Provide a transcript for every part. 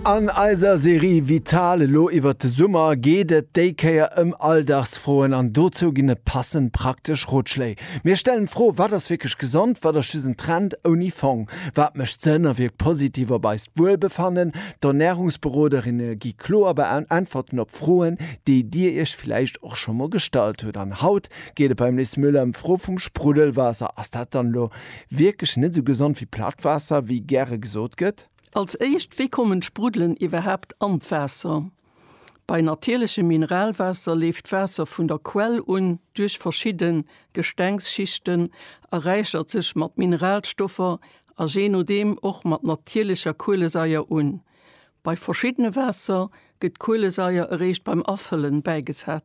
An eiser Serie Vital elo iwwert de Summer geet et déi Kéier ëm Alldagsfroen an dozou ginn et passend praktesch Rotschléi. Mir stellen d'Fro, Wat ass wierklech gesond? Wat ass just en Trend ouni Fong? Wat mécht Sënn a wierkt positiv op eist Wuelbefannen? D'Ernärungsberoderinne gi kloer Äntwerten op Froen, déi dir iech villäicht och scho mol gestallt hutt. An haut geet et beim Liz Müller ëm d'Fro vum Spruddelwaasser, Ass dat dann elo Wierklech net esou gesond wéi platt Waasser, wéi gäre gesot gëtt? Als éischt, wéi kommen d'Spruddelen iwwerhaapt an d'Waasser? Bei natierlechem Mineralwaasser leeft d'Waasser vun der Quell un duerch verschidde Gestengsschichten a räichert sech mat Mineralstoffer a jee nodeem och mat natierlecher Kuelesaier un. Bei verschiddene Waasser gëtt Kuelesaier eréischt beim Afëllen bäigesat.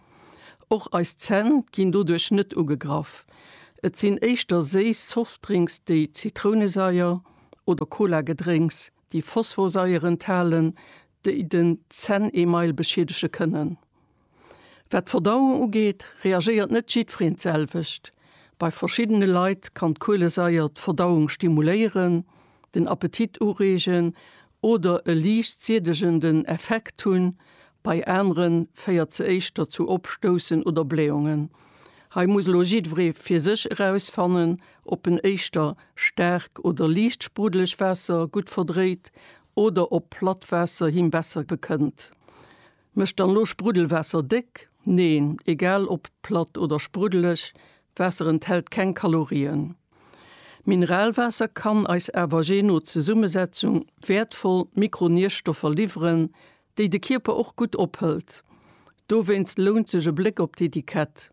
Och eis Zänn ginn doduerch net ugegraff. Et sinn éischter séiss Softdrinks déi Zitrounesaier oder Colagedrénks, déi Phosphorsaier enthalen, déi den Zänn-Email beschiedege kënnen. Wat d'Verdauung ugeet, reagéiert net jiddwereen d'selwecht. Bei verschiddene Leit kann d'Kuelesaier d'Verdauung stimuléieren, den Appetit ureegen oder e liicht siedegenden Effekt hunn, bei anere féiert se éischter zu Opstoussen oder Blähungen. Hei muss elo jiddweree fir sech erausfannen, ob en éischter staark oder liicht spruddeleg Waasser gutt verdréit oder ob platt Waasser him besser bekënnt. Mécht dann lo Spruddelwaasser déck? Neen, egal ob platt oder spruddeleg, d'Waasser enthält keng Kalorien. Mineralwaasser kann eis awer jee no Zesummesetzung wäertvoll Mikronierstoffer liwweren, déi de Kierper och gutt ophëlt. Dowéinst lount sech e Bléck op d'Etikett.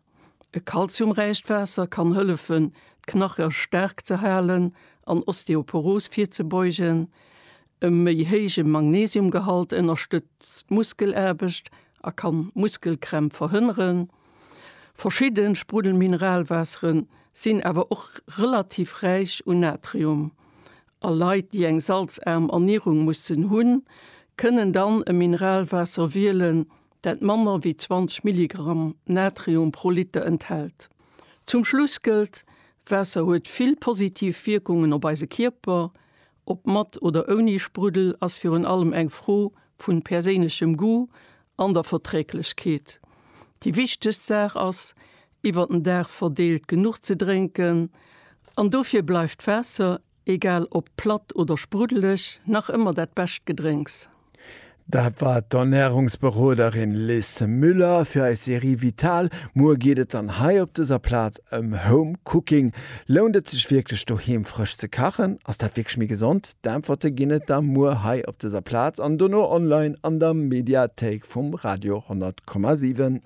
E kalziumräicht Waasser kann hëllefen, d'Knache staark ze halen an Osteoporos virzebeugen. E méi héije Magnesiumgehalt ënnerstëtzt d'Muskelaarbecht a ka Muskelkrämp verhënneren. Verschidde Spruddelmineralwaassere sinn awer och relativ räich un Natrium, a Leit, déi eng salzaarm Ernierung mussen hunn, kënnen dann e Mineralwaasser wielen, dat manner wéi 20 Milligramm Natrium pro Liter enthält. Zum Schluss gëllt, Waasser huet vill positiv Wierkungen op eise Kierper, Ob mat oder ouni Spruddel ass virun allem eng Fro vun perséinlechem Goût an der Verträglechkeet. Déi wichtegst Saach ass, iwwert den Dag verdeelt genuch ze drénken an dofir bleift Waasser, egal ob platt oder spruddeleg, nach ëmmer dat bescht Gedrénks. Dat war d'Ernärungsberoderin Liz Müller fir eis Serie Vital. Muer geet et dann hei op dëser Plaz ëm Home Cooking. Lount et sech wierklech doheem frësch ze kachen? Ass dat wierklech méi gesond? D'Äntwerte ginn et da muer hei op dëser Plaz an dono online an der Mediathéik vum Radio 10,7.